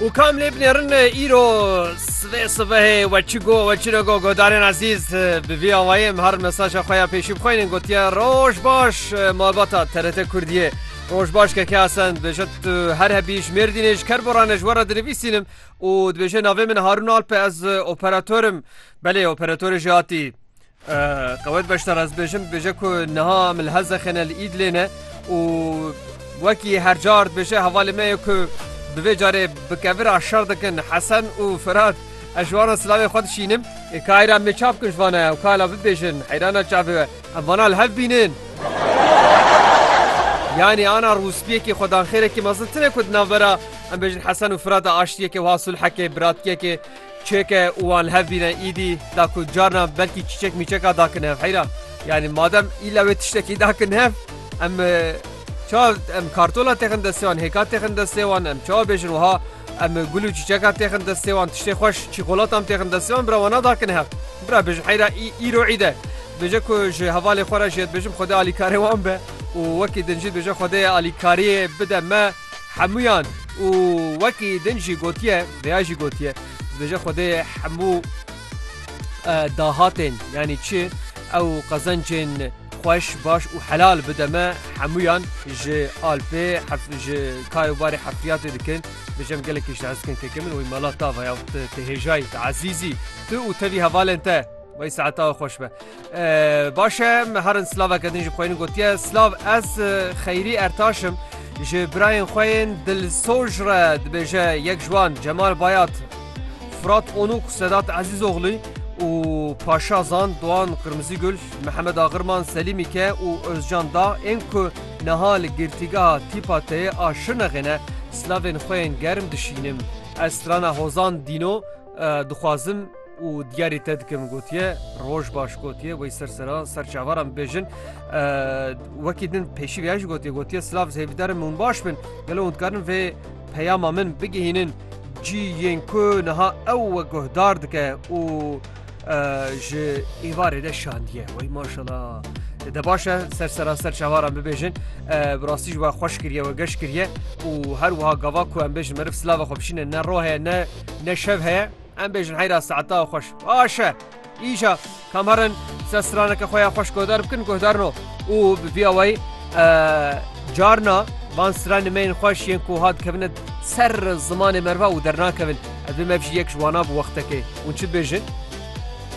û kam lê binêrin îro sivê sivehê we çi got we çi negot godarên ezîz bi vî awayê min her mesaja xwe ya pêşî bixwînin gotiye roj baş malbata TRT Kurdiyê roj baş keke Hasan dibêje tu her hebî ji Mêrdînê ji ker bo re ne ji we re dinivîsînim û dibêje navê min Harûn Alp e ez operatorim belê operatorê jî hatî Qewet beşdar ez bêjim bêje ku niha min li Helzexêne li Îdlê ne û wekî her car dibêje hevalê me ye ku bi vê carê bi kevira şer dikin Hesen û Firat ez ji wan silavê xwe dişînim. Kayra me çav bikin ji vana ew kala bibêjin heyrana çavê we em vana li hev bînin. Yanî ana rûspiyekî xwedanxêrekî mezin tune ku di navbera em bêjin Hesen û Firata aştiyekê wiha sulhekê biratkiyekê Çêke û wan li hev bîne îdî da ku carna belkî çîçek mîçeka da kin hev heyra. Yanî madem îlla wê tiştekî da kin hev em çawa em kartola têxin destê wan, hêka têxin destê wan em çawa bêjin wiha em gul û çîçeka têxin destê wan tiştê xweş çîkolatan têxin destê wan bira wana da kin hev. Bira bêjin heyra î îro îd e. Bêje ku ji hevalê xwe re jê dibêjim xwedê alîkarê wan be û wekî din jî dibêje xwedê alîkariyê bide me. Hemûyan û wekî din jî gotiye vêya jî gotiye dibêje Xwedê hemû dahatên yanî çi ew qezencên xweş baş û helal bide me hemûyan ji Alpê hef ji kar û barê hefriyatê dikin bijem gelekî ji hezkin keke min wî mala tava ya te hêjayî te ezîzî tu û tevî hevalên te Vay saeta xweş be. Baş e me herin silaveke din ji xwe yên gotiye silav ez xeyrî ertaş im ji birayên xwe yên dilsoj re dibêje yek ji wan Cemal Bayat Firat Onûk Sedat Ezîzoglî û Paşa Zan Doan Qirmizî Gul Mihemed Axirman Selîmî ke û Ozcan Da ên ku niha li girtîgeha Tîpa Teyê a Şirnexê ne silavên xwe yên germ dişînim ez strana Hozan Dîno Dixwazim û diyarî te dikim gotiye roj baş gotiye wey ser sera ser çavaran bêjin wekî din pêşî vêya jî gotiye gotiye silav zêvîdarin hûn baş bin gelo hûn dikarin vê peyama min bigihînin cî yên ku niha ew we guhdar dike û ji êvarê de şandiye wey maşala de baş e ser seraser çawaran bibêjin bi rastî ji we xweş kiriye we geş kiriye û her wiha gava ku em bêjin meriv silava xwe bişîne ne ro heye ne ne şev heye em bêjin heyra saeta xweş baş e îja kamerin se straneke xwe ya xweş guhdar bikin guhdarno û bi vîya wey carna van stranê me yên xweş yên ku hat kevine Ser zimanê merva û dernakevin. Ev vê mev jî yek ji wanan bi wextekê. Hûn çi dibêjin?